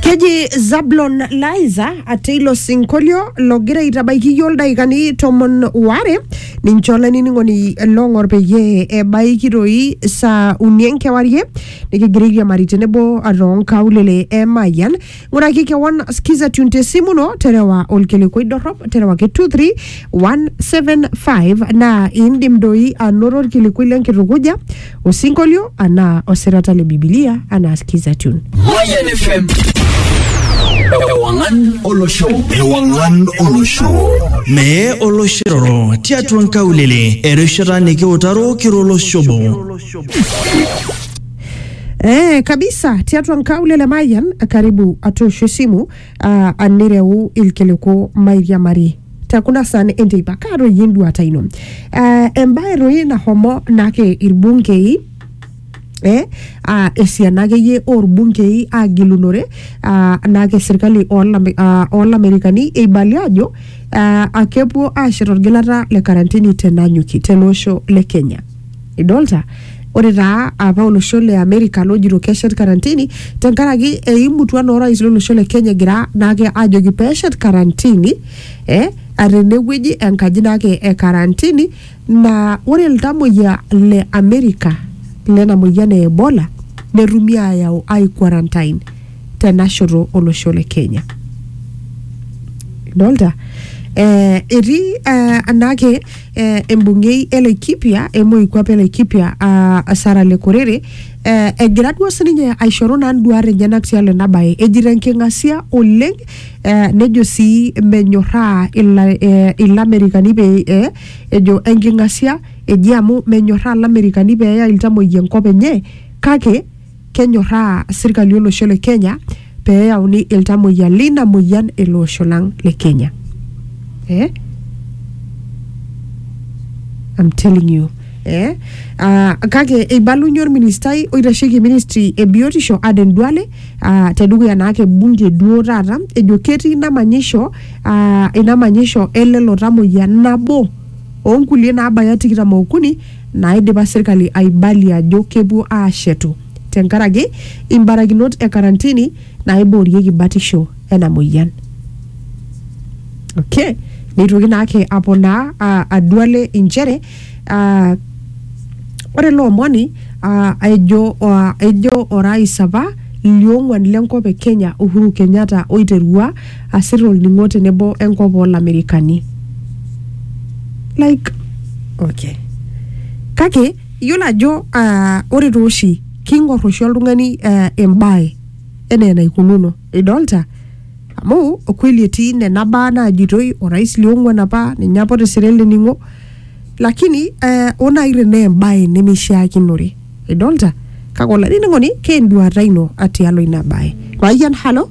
keji zablon liza ate ilo sinkolio logira aitabaiki iyio ildaikani tomon ware ninche olainining'oni long'or peyie ebaiki toi saa uni enkewarie nikigira airiamari tenebo toonkaulele e mayian ng'uraki kewon skiza tune tesimu ino terewa olkilikuai dorrop terewaki 23175 naa indim doi anoto olkilikuai lenkitukuja osinkolio anaa osirata le bibilia anaa skiza tune Mayan FM. Ewangan Olosho. Ewangan Olosho. Mee oloshiroro tiatua nkaulele erishata nikiutaro kiro oloshobo. Eh, kabisa tiatua nkaulele mayian karibu atoosho esimu uh, anireu ilkiliku mairiamari tekuna san enteipa kaa doi enduata ino eh, embae doi nahomo nake irbungei eh, ah, esiana akeyie orbungei agilunore ah, nake serkali olame- ah, olamerikani eibali ajo ah, akepuo ashet orgilata le karantini tenanyuki tele osho le kenya Idolta? Ore taa apa olosho le Amerika lojito keshet karantini tenkaraki eimutua naa orais lolosho le Kenya egira naake ajoki peshet karantini eh, tenewueji enkaji naake e karantini naa ore iltamoyia le Amerika lena moyian e Ebola netumi ayau ai quarantine tenashoto olosho le Kenya. Idolta? Eh, etii eh, naake eh, embungei e Laikipia e moikuape e Laikipia ah, Sarah Lekorere eh, egira duo sininye aishoru naa nduat enyenak tialo ena bae ejito enking'asia oleng eh, nejo sii menyorraa ila, eh, ilamerikani pee eh, ejo enking'asia eji amu menyorraa ilamerikani pee eya iltamoyia enkop enye kake kenyorraa sirkali olosho le Kenya pee eyauni iltamoyia leina moyian ele osho lang le Kenya. Eh? I'm telling you. Eh? Uh, kake eibalunye orministai oitasheki ministry e biotisho Aden Duale uh, tedukuya naake bunge duo taata ejo ketii ina manyisho uh, ina manyisho elelo tamoyia nabo onkulie naabaya tikitam okuni naaidipa serkali aibalie ajo kepuo aashetu tenkaraki imbarakinot e karantini naaiboorieki batisho ena moyian. Okay. Neitoki naake aponaa ah, aduale inchere ah, ore ele omoni ah, ejo ah, ejo orais apa liong'uan lenkop e Kenya Uhuru Kenyatta oiterua asir olning'o tenebo enkop oolamerikani like okay kake iyiolo ajo ah, ore tooshi king'or oshi oltung'ani ah, embae enaa enaikununo idolta amu kweli etii nena baa naajitoi orais liong'uan apa ninye apa otisira ele ning'o lakini eh, oo naaji tenaa embae nemeishiakinore idolta kake olainining'oni keenduata ino atialo ina bae mayian halo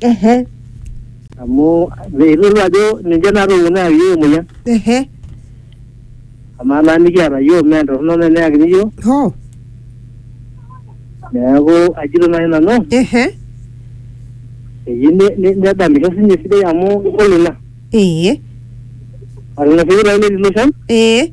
ehe amu meitodolu ajo ninche naatopone ayaki iyiook emoyian ehe amaa naa nikiata iyiook mee entorrono naa eneyakini iyiook hoo neeku ajito naaji nanu ehe eyieu ne- ne- nedamisho sinye esidai amu kegol ina ee amu ina pee eitauni ilo shan ee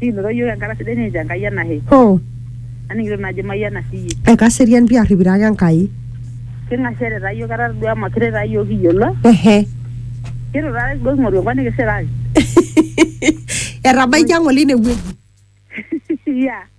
Nikinotito iyiook enkata sidai nikincho Enkai enashe. Hoo. Aning'ito naa ajo imayiana sii iyie. Ekaserian pii arripito ake Enkai. King'asiate taa iyiook etaa todua mekure taa iyiook kiyiolo. Ehe. Keitu taata kipuo king'oru enkop nikisiraki. Etabaikia ng'ole ine wueji. Yeah.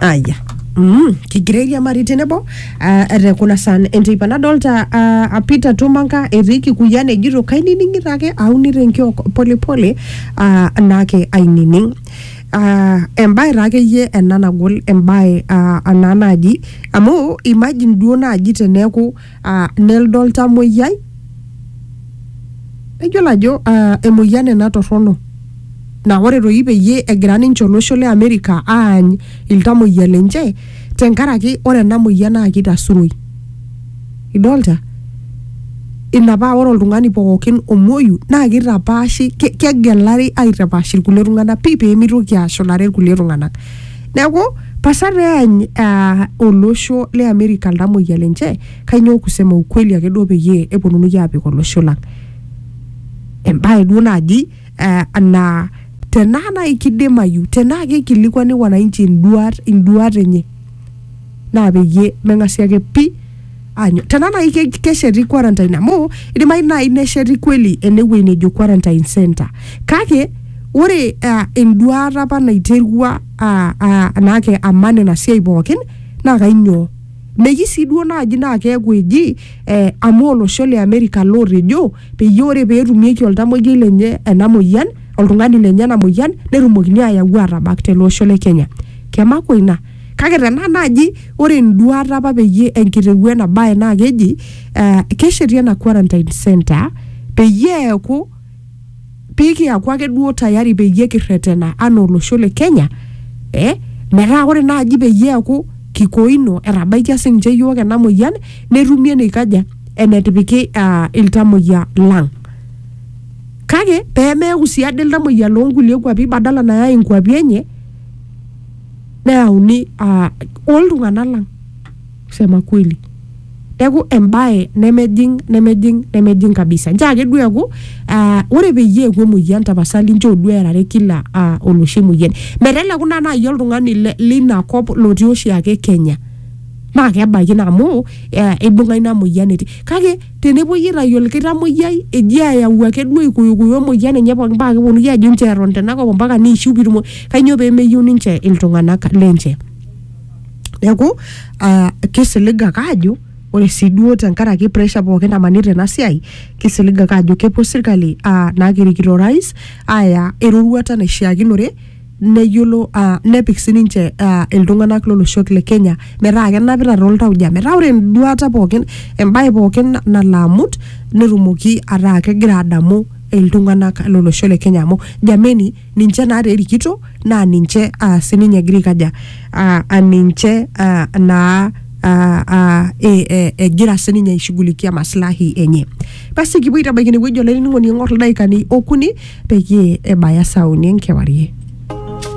aya Mm, kigira airiamari tenebo ah, te kuna san enteipa nadolta ah, ah, Peter Tumanga etii Kikuyian ejito kainining'ito ake aunito enkiok polepole ah, naake ainining Ah, embae taa akeyie ena nagol embae ah, ena naaji amu imagine duo naaji teneeku uh, neldo oltamoyiai eyiolo ajo uh, emoyian ena torrono na ore toi peyie egira ninche olosho le Amerika aany iltamoyia lenche tenkaraki ore ena moyian naa kitasuroi idolta ina paa ore oltung'ani pookin omuoyu naa kitapaashi ke- kegelari aitapaash irkulie tung'anak pii peemitoki ashulare irkulie tung'anak neaku pasa peany uh, olosho le amerika iltamoyia lenche kainyoo kusema ukweli ake duo peyie eponunui apik olosho lang embae duo naji uh, naa tenaa nai kidimayu tenaa kikilikuani wananchi induat induat enye naa peyie meng'asi ake pi anyo tena nai ke- kesheti quarantine amu idimayu nai nesheti kweli enewuei nejo quarantine center kake ore uh, enduata apa naiterua uh, uh, naake aman ina siai pookin naa kainyoo meji sii duo naaji naa keeku eji eh, amu olosho le Amerika lootejo peyie ore peetumieki oltamoyiai lenye ena moyian oltung'ani lenye ena moyian netumokini ayau atabak tele osho le Kenya kemakwa ina kake tenaa naaji ore enduata apa peyie enkitewuo ena bae naa keji eh, kesheti ena quarantine center peyie eeku pikiaku ake duo tayari peyie kirretena anaa olosho le Kenya eh, metaa ore naaji peyie eeku kikoino etabaikia sininche iyiook ena moyian netumi eneikaja enetipiki ah, iltamoyia lang kake pemeeku sii ade iltamoyia loonkulie kuapi badala nayai inkuapi enye neyauni uh, oltung'anak lang kusema kweli neeku embaye nemejing nemejing nemejing kabisa nchoo ake duo eeku uh, ore peyie eeku emoyian tapasali nchoo duo erare kila uh, oloshi moyian meteleku naa naaji oltung'ani le- leina kop lotii oshiake kenya naa kebaiki naa amu eh, eibung'a ina moyian etii kake tenepuoi aitayu olkitamoyiai eji ayau ake duo ikuyukuyu emoyian enye pookin paa keponunui ajo inchoo eton tenakop ompaka niishiu pitumo kanyoo pemeyieu ninche iltung'anak lenche neeku uh, kisilig ake ajo ore sii duo tenkaraki pressure pookin namanita ena siai kisilig ake ajo kepuo sirkali uh, nakirikito orais aya eroruata naishiakinore neyiolo uh, nepik sininche uh, iltung'anak loloshok le Kenya metaa kenapita toltauja metaa ore enduata pookin embaye pookin na- nalo amut netumoki ataa kegira adamu iltung'anak lolosho le Kenya amu jameni ninche naa terikito naa ninche uh, sininye egira aikaja uh, ninche uh, naa uh, uh, e, e, egira sininye aishughulikia maslahi enye basi kipuo aitabaiki inewueji olainining'oni eng'or ildaikani okuni peyie ebaya saa uni enkewarie